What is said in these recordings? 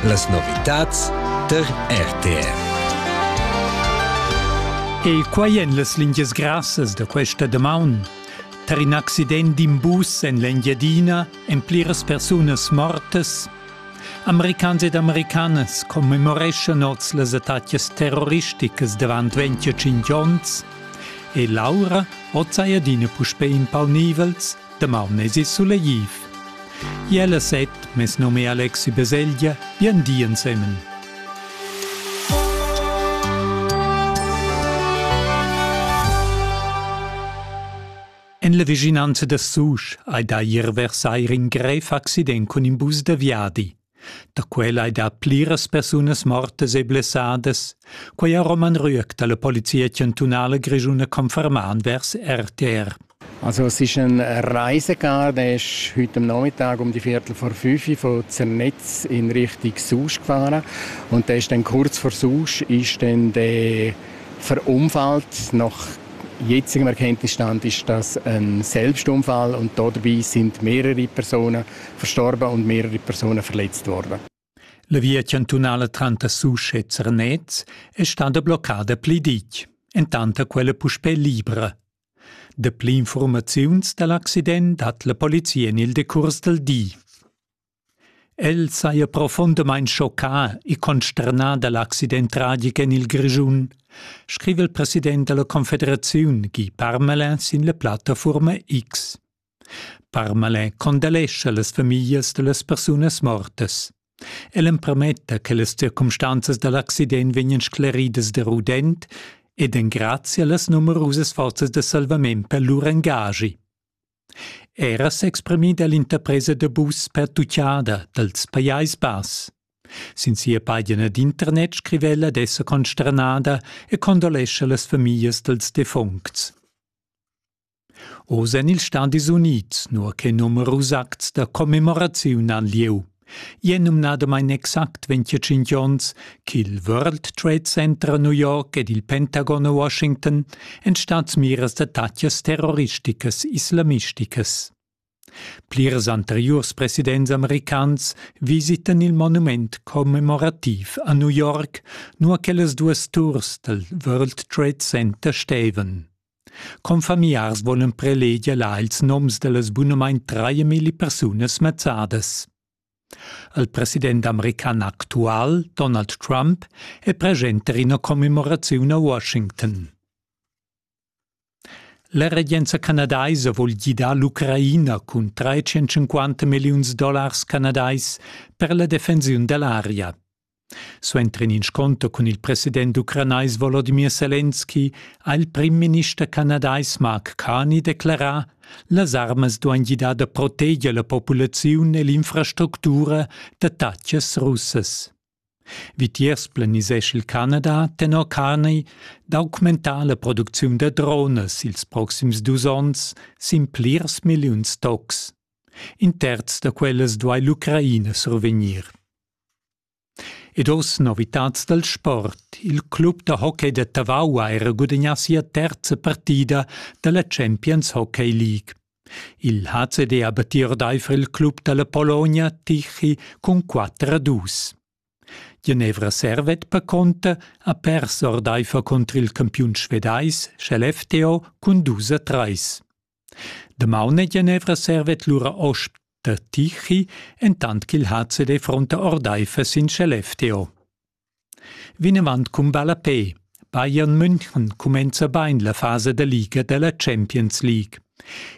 Las novitads tar RTR. E quai èn las lingias grassas da questa damaun. Tar in accident d'in bus en l'Engiadina èn pliras persunas mortas. Americans ed americanas commemoreschan oz las attacas terroristicas davant 25 onns e Laura oz hai adina puspè in palnivels Damaun esi sulegliv. Jella set, mes nome è Alexi Beseglia, bien di ensemen. En la vicinanza da Susch hai da ier vers eir in grev accident cun in bus da viadi. Da quella ei dat pliras persunas mortas e blessadas. Quei ha Roman Rüegg dalla Polizia chantunala grischuna confermà vers RTR. Also es ist ein Reisegarde, ist heute am Nachmittag um die Viertel vor fünf von Zernetz in Richtung Susch gefahren und da ist dann kurz vor Susch ist dann der verunfallt nach jetzigem Erkenntnisstand ist das ein Selbstunfall und dabei sind mehrere Personen verstorba und mehrere Personen verletzt worden. La via chantunala tranter Susch e Zernez è stata bloccada pli ditg, entanta quella puspè libra. Dapli informaziuns da l'accident hat la polizia en il decurs del di. El saja profundamain schoccà e consternà da l'accident tragic en il Grischun, scrive il president della Confederazione Guy Parmelin sin la plattaforma X. Parmalin condemnescha las famiglias da las persunas mortas. El empermetta che las circumstanzas da l'accident vegnan scleridas da rudent ed engrazia las numerusas forzas da salvament per lur engagi. Era s'exprimida l'interpresa da bus pertucciada dals Pajais Bass. Sin sia pagina d'internet scrive ella ad esser consternada e condolescha las famiglias dals defuncts. Oz en ils Stadis Unids, nua che numerus acts da commemoraziun han lieu. È numnadamain exact 25 onns ch'il World Trade Center a New York ed il Pentagon a Washington èn stads miras da tatgas terroristicas islamisticas. Plirs anteriurs presidents americans visitan il monument commemorativ a New York, nua che las duas turs dal World Trade Center stevan. Confamiars volan preleger là ils noms da las bunamain trais persunas mazzadas. Il president american actual, Donald Trump, è preschent ina commemoraziun a Washington. La regenza canadaisa vul gidar l'Ucraina cun 350 milliuns dollars canadais per la defensiun da l'aria. Suenter in inscunter cun il president ucranais Volodimir Selenski ha il prim-minister canadais Mark Carney declarà las armas duain gidar da proteger la populaziun e l'infrastructura d'attatgas russas. Vitiers planisesch il Canada tenor Carney d'augmentar la producziun da dronas ils proxims dus onns sin plirs milliuns tocs. In terz da quellas duai l'Ucraina survegnir. Ed oz novitads dal sport. Il club da hockey da Tavau ha era gudagnà sia terza partida da la Champions Hockey League. Il HCD abattir daiva il club da la Pologna Tichy cun 4 a 2. Genevra servet per conta a pers ordaifer contr il campiun svedais sch'el FTO cun 2 a 3. Damaun e Genevra servet lura osp da Tichy, entant ch'il HCD fronta ordaifer sin sch'el FTO. Vinavant cun ballapè. Bayern München cumenza bain la fasa da liga da la Champions League.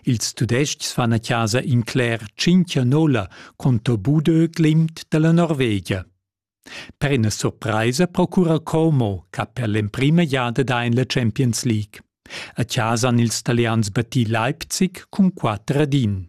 Ils Tudestgs fan a chasa in cler tschinch a nolla contro Budö Glimt dalla Norvegia. Per ina surpraisa procura Como che per l'emprima giada da in la Champions League. A chasa han ils Italians batì Leipzig cun 4 ad 1.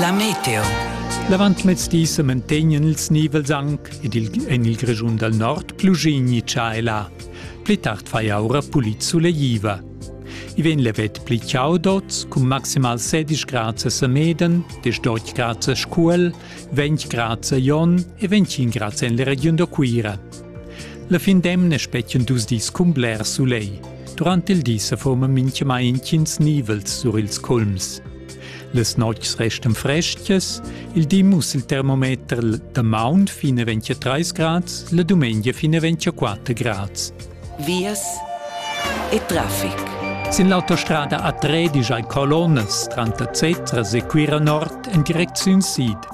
La meteo. L'avantmezdi semantegnan ils nivels anc ed il, en il Grischun dal nord plugigni cha e là. Pli tard fai aura pulit suleiva. I vegn levet pli ciao dots cun maximal 16 grads a Semeden, 10 grads a Scuol, 20 grads a Jon e 25 grads en la regiun da Cuira. La fin d'emna spetgan dus dis cun bler sulegl. Durant il di se forma mintgamai intgins nivels sur ils culms. Las notgs restan frestgas, il di muss il termometer da maun fine 23 grads, la dumengia fine 24 grads. Vias e traffic. Sin l'autostrada a Tredisch ein colonnas tranter Zetra e Cuira Nord en direcziun sid.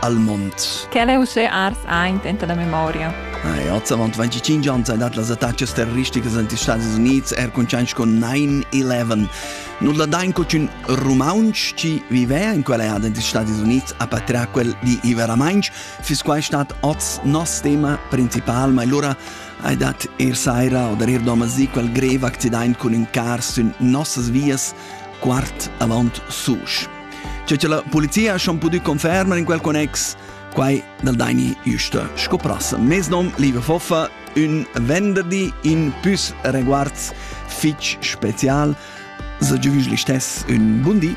al mond. Quelle usse ars aint enta la memoria. Ah, ja, zavant 25 ans hai dat las attacas terroristicas en die Staaten Unids er con change con 9-11. Non la dain co un romaunch ci vivea in quella ad in die Staaten Unids a patria quel di i veramainch, fis quai stat oz nos tema principal, ma allora hai dat ir saira oder ir domasi quel greve accident con un car sün nossas vias quart avant sus. C'è che la polizia schon pudü confermar in quel connex, quai dal Daini Justa scoprasse. Mes nom, liebe Foffa, un venderdi in pus reguards fitch spezial. Se giuvis listess un bundi.